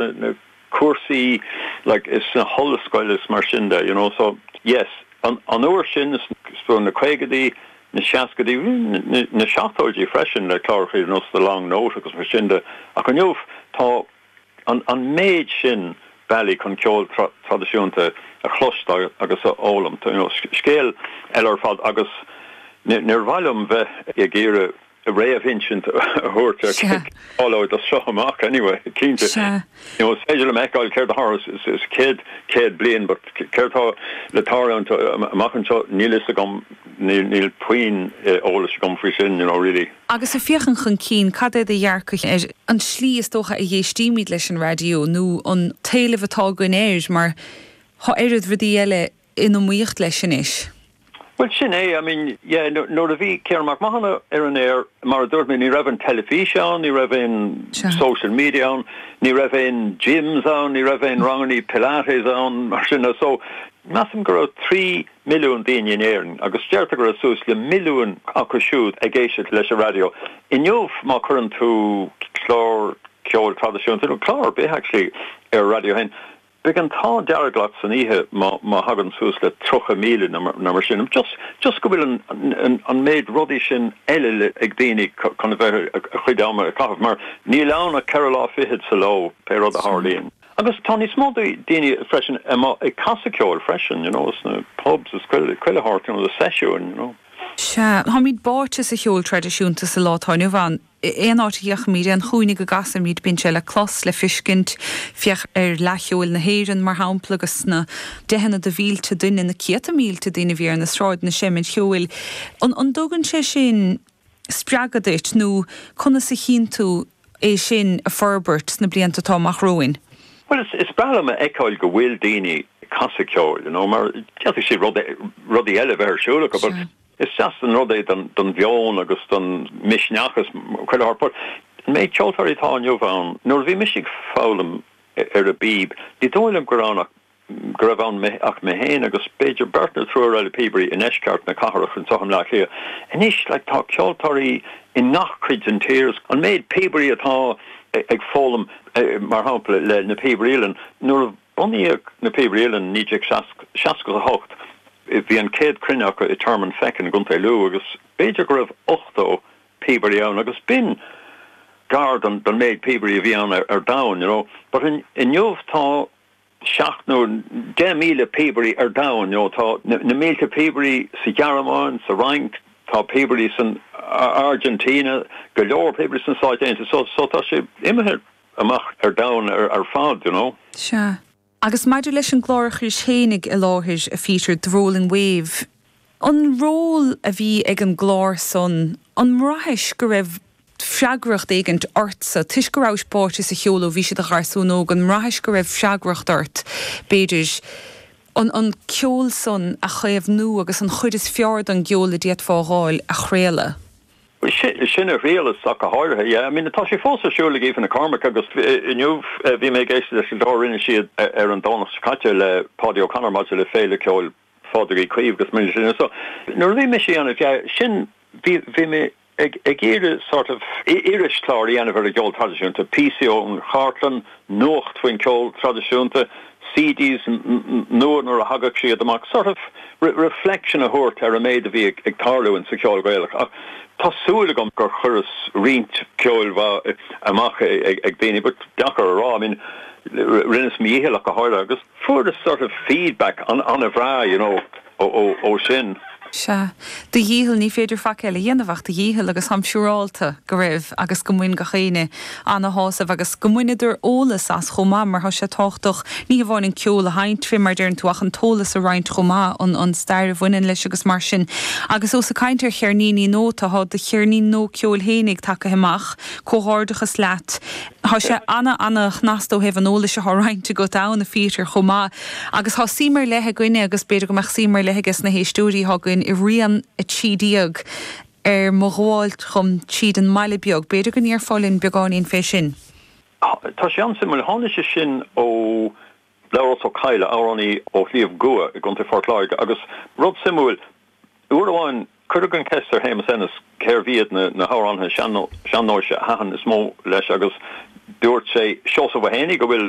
na cúrsaí like is sna hollscoileanna is mar sin de you know so yes an an uair sin is sna na caogaidí na seascaidí even na seachtóidí freisin le clárachaí you know so the long note agus mar sin de ach inniu tá an an méid sin bealaí chun ceol traidisiúnta a chloisteáil agus a fhoghlaim you know scéal eile ar fad agus níor mhaith liom bheith ag iarraidh réamhinsint a thabhairt ar céard a tharlóidh as seo amach anyway, cinnte. Sea. You know, is féidir liom a fheiceáil céard a tharla le céad, céad bliain but céard atá le tarlúint amach anseo, níl fhios agam, níl puinn eolais agam faoi sin, you know, really. Agus ag féachaint chun cinn, cad é do dhearcadh ar an slí is dócha a éistímid leis an raidió nó an t-éileamh atá againn air mar tá oiread rudaí eile in iomaíocht leis anois. Bhuel, sin é. I mean, yeah, nuair a bhí Ciarán Mac Mathúna ar an aer, mar a dúirt mé, ní raibh an teilifís ann, ní raibh aon social media ann, ní raibh aon gyms ann, ní raibh aon rangannaí Pilates ann, mar sin de. So, measaim go raibh trí mhilliún duine in Éirinn agus deirtear go raibh suas le milliúin acu siúd ag éisteacht leis an raidió. Inniu, má chuireann tú clár ceoil traidisiúnta, nó clár ar bith, actually, ar an raidió féin, Beidh an t-ádh dearg leat san oíche má thagann suas le tríocha míle nó mar sin, just go bhfuil an méid rudaí sin eile ag daoine chun a bheith a gcuid ama a chaitheamh, mar níl ann ach ceithre huaire fichead sa ló, pé rud a tharlaíonn. Agus tá níos mó daoine freisin amuigh ag casadh ceoil freisin, you know, sna pubs is chuile shórt, you know, seisiúin, you know. Sea, táimid báite sa cheol traidisiúnta sa lá atá inniu ann. aon áit a fhéachaimid, aon chúinne go gcasfaimid, bíonn sé le clos, le fiscint, féach ar Fhleadh Cheoil na hÉireann, mar shampla, agus na. deicheanna de mhílte duine, na céadta mílte duine a bhí ar na sráideanna, seimint cheoil. An dtugann sé sin spreagadh duit nó conas a chíonn tú é sin ag forbairt sna blianta atá amach romhainn? Bhuel, is breá liom a fheiceáil go bhfuil daoine ag casadh ceoil, mar d'fhéadfadh siad rudaí eile a bheith ar siúl acu. Is deas an rud é don mheon agus don mhisneach is chuile shórt. An méid ceoltóirí atá inniu ann, nuair a bhí mise ag foghlaim ar an bpíb, ní dóigh liom go raibh ann ach mé féin agus b'fhéidir beirt nó triúr eile píobairí i ndeisceart na cathrach anseo i mBleá Cliath. Anois tá ceoltóirí i ngach cuid den tír. An méid píobairí atá ag foghlaim, mar shampla, le Na Píobairí Uilleann, nuair a. Bunaíodh Na Píobairí Uilleann i 1968. Bhí an céad cruinniú acu i Tearmann Feichín i gContae Lú agus b'fhéidir go raibh 80 píobairí ann agus b'in gar don méid píobairí a bhí ann ar domhain, you know. But inniu tá seacht nó deich míle píobairí ar domhain, you know. Tá na mílte píobairí sa Ghearmáin, sa Fhrainc, tá píobairí san Argentina, go leor píobairí sna Stáit Aontaithe, so tá sé imithe. amach ar domhan ar fad, you know. Sea. Agus maidir leis an gclár a chuiris féin i láthair, a Pheter, The Rolling Wave, an ról a bhí ag an gclár san, an mbraithis go raibh freagracht éigin ortsa, toisc go rabhais báite sa cheol ó bhís i do gharsún óg, an mbraithis go raibh freagracht ort, b'fhéidir, an ceol san a chaomhnú agus an chuid is fearr don gceol a d'fhéadfá a dh'fháil a chraoladh? Sin a thriaileas ach go háirithe. Yeah, I mean, tá sé fós ar siúl ag Aoife Nic Cormaic agus inniu bhí mé ag éisteacht leis an gclár a rinne siad ar an Domhnach seo caite le Paudie O'Connor maidir le Féile Ceoil Phádraig Uí Chaoimh agus mar sin. So, nuair a bhí mise a dhéanamh, yeah, sin, bhí, bhí mé ag, ag iarraidh sort of, irischlár a dhéanamh ar an gceol traidisiúnta, píosaí ón chartlann, nuacht faoin gceol traidisiúnta, CDs nua nuair a thagadh siad amach, sort of reflection a thabhairt ar an méid a bhí ag tarlú in sa cheol Gaelach. Ach tá súil agam gur chuireas roinnt ceoil mhaith amach ag daoine but deacair a rá, I mean rinneas mo dhícheall ach go háirithe agus fuaireas sort of feedback an-bhreá, you know. Ó, ó, ó sin. Sea. Do dhícheall ní féidir faic eile a dhéanamh ach do dhícheall agus táim siúrálta go raibh agus go mbain gach éinne ana-shásamh agus go mbaineadar eolas as chomh maith mar tá sé tábhachtach ní hamháin an ceol a sheinnt fé mar deireann tú ach an t-eolas a roinnt chomh maith, an, an stair a bhaineann leis agus mar sin. Agus ós ag caint ar cheirníní nua, tá do cheirnín nua ceoil féinig tagtha amach, comhghairdeachas leat. Thá sé ana-ana-shnasta ó thaobh an eolais athá roinnte agat ann, a Phíotair, chomh maith, agus thá suím ar leith againne, agus b'fhéidir go mbeadh suím ar leith ages na héisteoirí athá againn, i rian a trí déag ar mo ghabháilt dom tríd an mbaile beag. B'fhéidir go ndéarfá linn beagáinín fé sin? Sea, tá sé an-suimiúil. Tháinig sé sin ó Labhrás Ó Cadhla, amhránaí ó Shliabh gCua i gContae Phort Láirge, agus rud suimiúil, Uair amháin, cuireadh an cheist ar Shéamus Ennis cérbh iad na hamhránaithe sean-nóis a thaitin is mó leis agus dúirt sé, Seosamh Ó hÉanaí, go bhfuil.